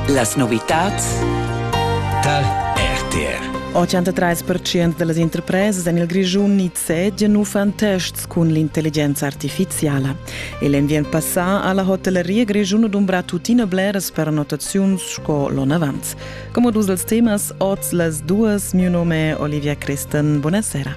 Las novitads dal RTR 83% da las interpresas en il Grischun nizzegian uffant tests cun l'intelligenza artifiziala. E l'enviern passà ha la hotelleria grischuna dumbrà tuttina bleras pernottaziuns sco l'onavant. Come dus dels temas, oz las duas, mio nome è Olivia Christen. Buonasera.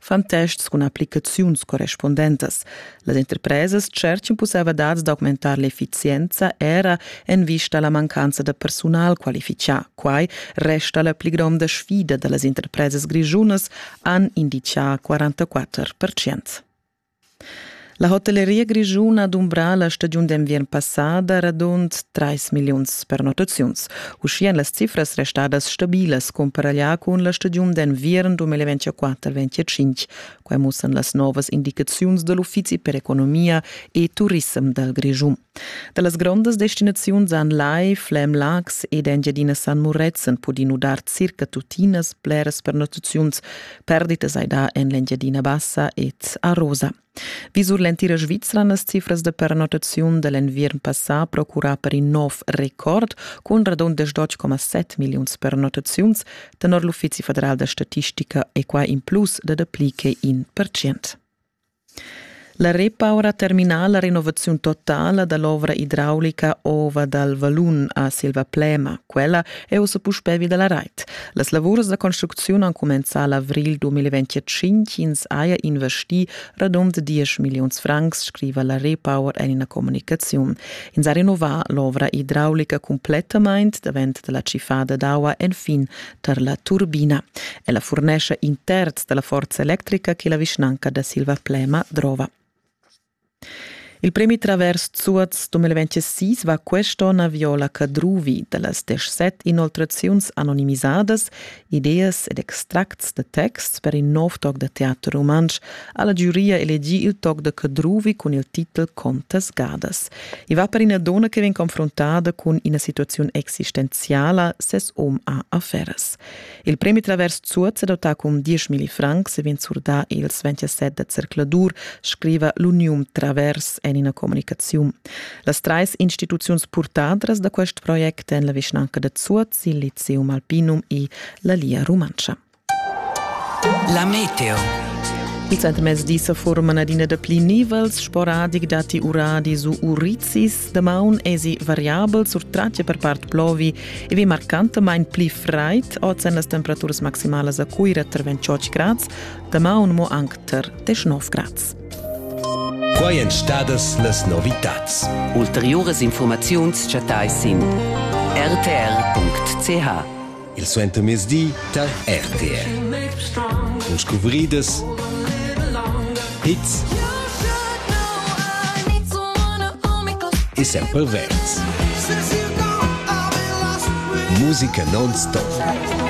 fan tests cun applicaziuns correspundentas. Las interpresas cerchin pussevadads d'augmentar l'efficienza era en vista alla mancanza da personal qualifichà. Quai resta la pli gronda sfida da las interpresas grischunas, han indichà 44%. La hotelleria grischuna ha dumbrà la stagiun d'enviern passada radund trais milliuns pernottaziuns. Uschia èn las cifras restadas stabilas cumparaglià cun la stagiun d'enviern 2024-25. Quai mussan las novas indicaziuns da l'Uffizi per economia e turissem dal Grischun. Da las grondas destinaziuns han Lai, Flem, Laax ed Engiadina San Murezzan pudì nudar circa tuttinas bleras pernottaziuns. Perditas hai dà en l'Engiadina Bassa ed a Rosa. Vi sur l'entira Svizra las cifras de pernottaziun de l'enviern passà procura per in nov record cun radundas 12,7 milliuns pernottaziuns tenor l'Uffizi federal da statistica e qua in plus de dapli che in per cent. La repaura termina la renovaziun totala dall'ovra hidraulica Ova dal Valun a Silvaplema. Quella è ussa puspè vi dalla rait. Las lavurs da construcziun han cumenzà l'avril 2025. Ins haja investì radund 10 milliuns francs, scriva la Repower en ina communicaziun. Ins ha renovà l'ovra hidraulica cumplettamain davent dalla tschiffada d'aua enfin tar la turbina. Ella furnescha in terz da la forza electrica che la vischnanca da Silvaplema drova. Il premi Travers Zuoz 2026 va quest'onn a Viola Cadruvi da las 17 inoltraziuns anonimisadas, ideas ed extracts da texts per in nov toc da teater rumantsch ha la giuria elegì il toc da Cadruvi cun il titel Contas gadas. I va per ina donna che vegn confrontada cun ina situaziun existenziala. Ses um ha affaires. Il premi Travers Zuoz è dotà cun 10.000 francs e vegn surdà ils 27 da zercladur, scriva l'Unium Travers en ina communicaziun. Las trais instituziuns purtadras da quest project èn la vischnanca da Zuoz, il Lyceum Alpinum e la Lia Rumantscha. La meteo. Il centrmezdi sa forman adina dapli nivels sporadic datti uradis u urizis. Damaun esi variabel sur tratge per part plovi e vi marcantamain pli fraid. Oz èn las temperaturas maximalas a Cuira tar 28 grads, damaun mo anc tar 19 grads. Quai èn stadas las novitads. Ulteriuras informaziuns chattais sin rtr.ch. Il suentermezdi tar RTR. Cun scuvridas, hits e sempre verds. Musica non stop.